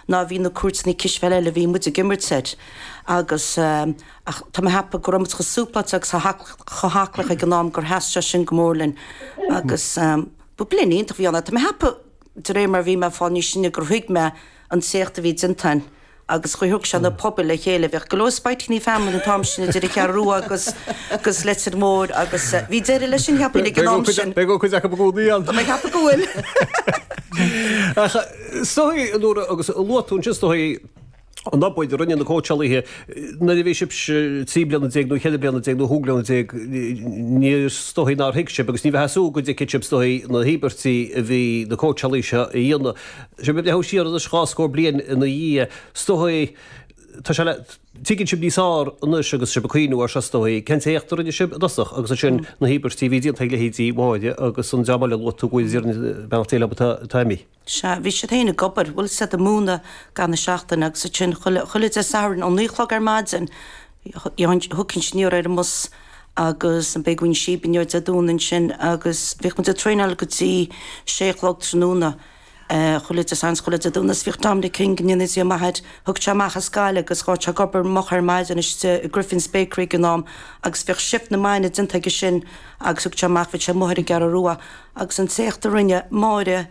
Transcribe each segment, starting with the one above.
ná bhí na cúirteanna cispheile eile a bhí muid ag imirt air agus ach tá mé ag ceapadh go raibh muid chomh súpláilte agus chomh haclaí ag an am gur sheas sé sin go mór linn agus ba bliain iontach a bhí ann. Tá mé ag ceapadh de réir mar a bhí mé ag fáil níos sine gur thuig mé an t-éacht a bhí déanta againn agus gur thug sé na pobail le chéile. Bhíodh go leor spaitíní family an t-am sin idir an Cheathrú Rua agus agus Leitir Móir agus bhí deireadh leis sin cheapfainn ag an am sin. Beidh cuid acu go dtí an. Tá mé ag ceapadh go bhfuil. Is dóichí a Nóra agus luaigh tú ansin, is dóichí an obair a rinne na cóitseálaithe nuair a bhí sibhse trí bliana déag nó ceithre bliana déag nó chúig bliana déag ní is dóichí nár thuig sibh agus ní bheadh súil go dtuigfeadh sibh is dóichí na híobairtí a bhí na cóitseálaithe seo a dhéanamh. Sibh ag breathnú siar anois dhá scór bliain ina dhiaidh, is dóichí tá sé le. Tuigeann sibh níos fearr anois agus sibh ag cuimhniú ar seo is dóigh. Cén t-éacht a rinne sibh i dtosach agus ansin na híobairtí a bhí déanta ag leithéidí Mháire agus an dream eile a luaigh tú go bhfuil idir an bealach déileáil atá atá imithe. Sea, bhí siad féin ag obair, bhí siad ag múineadh i gcaitheamh na seachtaine agus ansin chuile, chuile Dé Sathairn ó naoi a chlog ar maidin, thagainnse anoir ar an mbus agus d'fhaighinn síob anoir Dé Domhnaigh ansin agus bhíodh muid ag traenáil go dtí sé a chlog tráthnóna. Chuile Dé Sathairn is chuile Dé Domhnaigh is bhíodh Dominic King go ndéana Dia maith air. Thagadh sé amach as Gaillimh agus bhíodh sé ag obair moch ar maidin istigh i Griffin's Bakery ag an am agus bhíodh shift na maidine déanta aige sin agus thagadh sé amach, bhíodh sé amuigh ar an gCeathrú Rua agus an t-éacht a rinne Máire,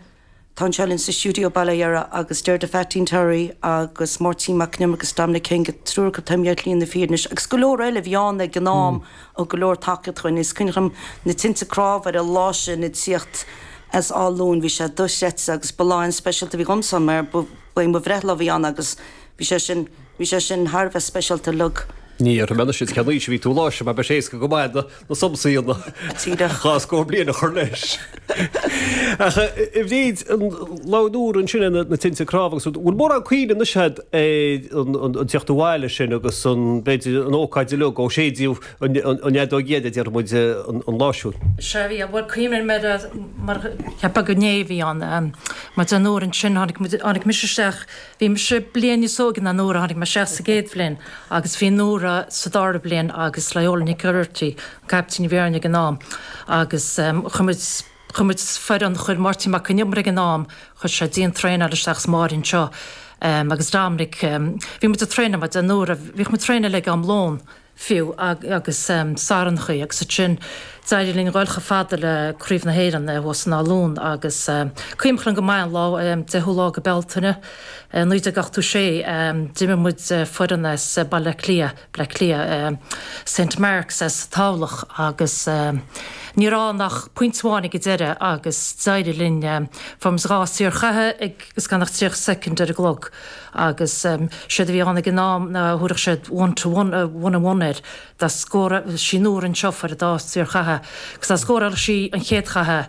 atá anseo linn sa stiúideo bail ó Dhia uirthi agus Deirdre Pheaitín Terry agus Máirtín Mac an Iomaire agus Dominic King, an triúr acu atá imithe ar shlí na fírinne, is go leor eile a bhí ann ag an am. Thug go leor tacaíocht dhúinn is cuimhin liom na tinte cnámh ar an lá sin ag tíocht as Áth Luain. Bhí sé dochreidte agus ba lá an-speisialta a bhí agamsa mar ba é mo bhreithlá a bhí ann agus bhí sé sin, bhí sé sin thar a bheith speisialta uilig. Níor mhionnaigh siad cén aois a bhí tú an lá sin mar bheadh sé éasca go maith na somsaí an dhá scór bliain a chur leis. Ach a Bhríd labhair Nóra ansin ar na tinte cnámh agus rud, bhfuil mórán cuimhne anois agat ar an tíocht abhaile sin agus an, b'fhéidir, an ócáid uilig ó séideadh an fheadóig dheiridh, a déarfaidh muid, an lá siúd? Sea, bhí, bhuel, cuimhním mar, mar, cheapaim go ndéigh, bhí ann, mar a dúirt Nóra ansin, tháinig muid, tháinig mise isteach, bhí mise bliain níos óige ná Nóra, tháinig mé isteach sa gcéad bhliain agus bhí Nóra sa dara bliain agus Loyola Nic Geraghty, caiptín a bhí orainn ag an am agus chuir muid, chuir muid foireann, chuir Máirtín Mac Con Iomaire ag an am, chuir sé dian-traenáil isteach is Máirín seo agus Dominic, bhí muid ag traenáil, mar a dúirt Nóra, bhíodh muid ag traenáil ag am lón fiú agus Satharnachaí agus ansin d'éirigh linn dul chomh fada le Craobh na hÉireann thuas in Áth Luain agus cuimhin liom go maith an lá, 10ú lá de Bhealtaine 1986, d'imir muid foireann as Baile Átha Cliath. Bleá Cliath, Saint Marks as Tamhlacht agus ní raibh ach pointe amháin ag an deireadh agus d'éirigh linn fuair muid dhá shaorchaitheamh agus gan ach 30 soicind ar an gclog agus séard a bhí ann ag an am ná thabharfadh siad one to one, one and one air, dá scórálfadh sí nuair an seolfar an dá shaorchaitheamh agus dá scórálfadh sí an chéad chaitheamh.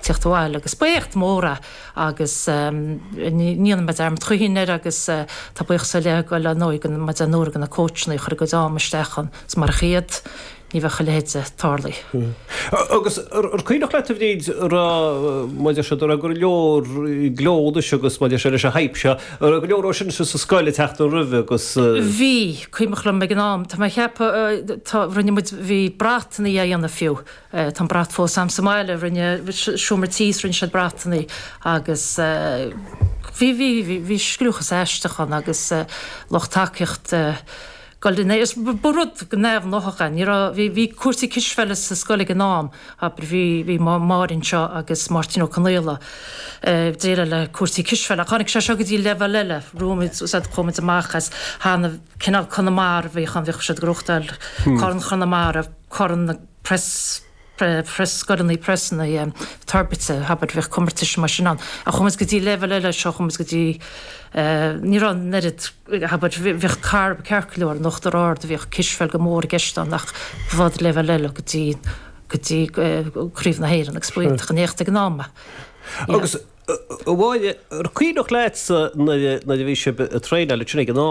tíocht abhaile agus b'éacht mór é agus ní dhéanfaidh mé dearmad choíchin air agus tá buíochas ar leith ag dul ar ndóigh go mar a dúirt Nóra go na cóitseanna a chuir a gcuid ama isteach ann agus marach iad ní bheadh a leithéid de tarlaithe. Agus ar cuimhneach leat a Bhríd an raibh maidir siad an raibh go leor gleo duit agus maidir seo leis an hype seo an raibh go leor dhó sin sa scoil ag teacht an roimhe agus. Bhí, is cuimhneach liom ag an am tá mé ag ceapadh tá rinne muid bhí bratannaí á dhéanamh fiú, Tá an brat fós agam sa mbaile, rinne seomra tís rinne siad bratannaí agus bhí, bhí, bhí, bhí scliúchas aisteach ann agus lucht tacaíochta ag goil in airde, ba rud go neamhghnáthach é, ní raibh, bhí, bhí cúrsaí cispheile sa scoil ag an am, abair bhí, bhí Máirín seo agus Máirtín Ó Conaola ag déileáil le cúrsaí cispheile ach tháinig sé seo go dtí leibhéal eile, rugamid, úsáid, chuaigh muid amach as, thaitnimh, cineál Conamara a bhíodh ann, bhíodh siad ag reáchtáil Corn Chonamara, Corn na. Pres pre Pres scoileanna Pres na Toirbhirte abair bhíodh comórtais mar sin ann ach chuaigh muid go dtí leibhéal eile seo chuaigh muid go dtí ní raibh an oiread abair bhíodh carb ceart go leor in Uachtar Ard bhíodh cispheil go mór i gceist ann ach ba leibhéal eile go dtí go dtí craobh na hÉireann agus b'iontach an éacht ag an am agus bhuel ar cuimhneach leatsa nuair a bhí sibh ag traenáil ansin ag an am